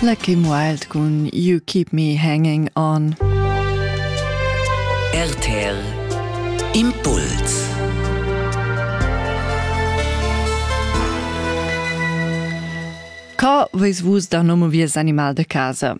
Lucky Wild cun You Keep Me Hanging On. RTL Impuls Ca veis vus da nomo vies animal de casa?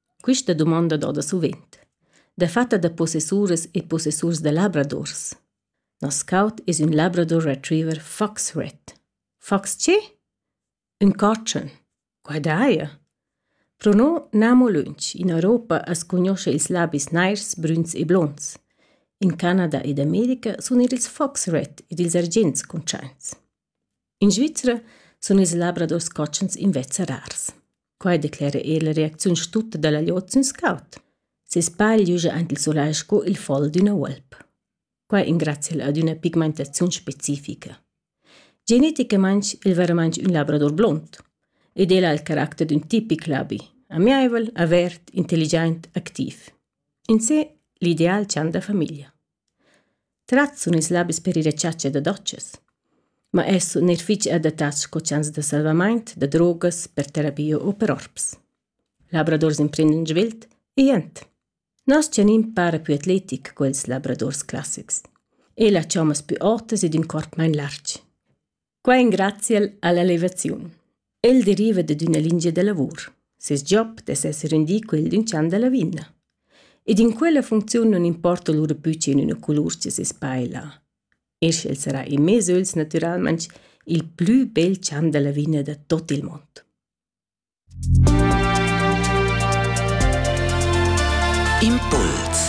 Quista dumonda doda suvent, dafatta da possessuras e possessurs da labradors. Nos caut es ün Labrador Retriever Fox Red. Fox che? Ün cotschen. Quai daja. Pro no n'amo lönch. In Europa as cugnuoscha ils labis nairs, brüns e blonds. In Canada ed America sun eir ils Fox Red ed ils argents cuntschaints. In Svizra sun ils labradors cotschens invezza rars. Quai declera el la reacziun stutta da la glieud sün scaut. Ses pagl giuja aint il sulai sco il fol d'üna uolp. Quai ingrazcha'l ad üna pigmentaziun specifica. Geneticamaing el veramaing ün labrador blond ed el ha il caracter d'ün tipic labi, amiaivel, avert, intelligiaint, activ. In se l'ideal chan da famiglia. Trat sun ils labis per ir a chatscha da dotschas. Ma els sun eir fich adattats sco chans da salvamaint, da drogas, per terapia u per orps. Labradors imprendan svelt e jent. Nos tganin para più atletic co ils labradors classics. El ha chommas pü otas ed ün corp main larg. Quai engraziel all'elevaziun. El deriva dad üna lingia da lavur. Seis job dess esser rendì quel d'ün chan da lavina. Ed in quella funcziun non importa lura pü che in üna colur che seis paila. Eir sch'el sarà in mez öls natüralmaing il plü bel chan da lavina da tot il mond. Impuls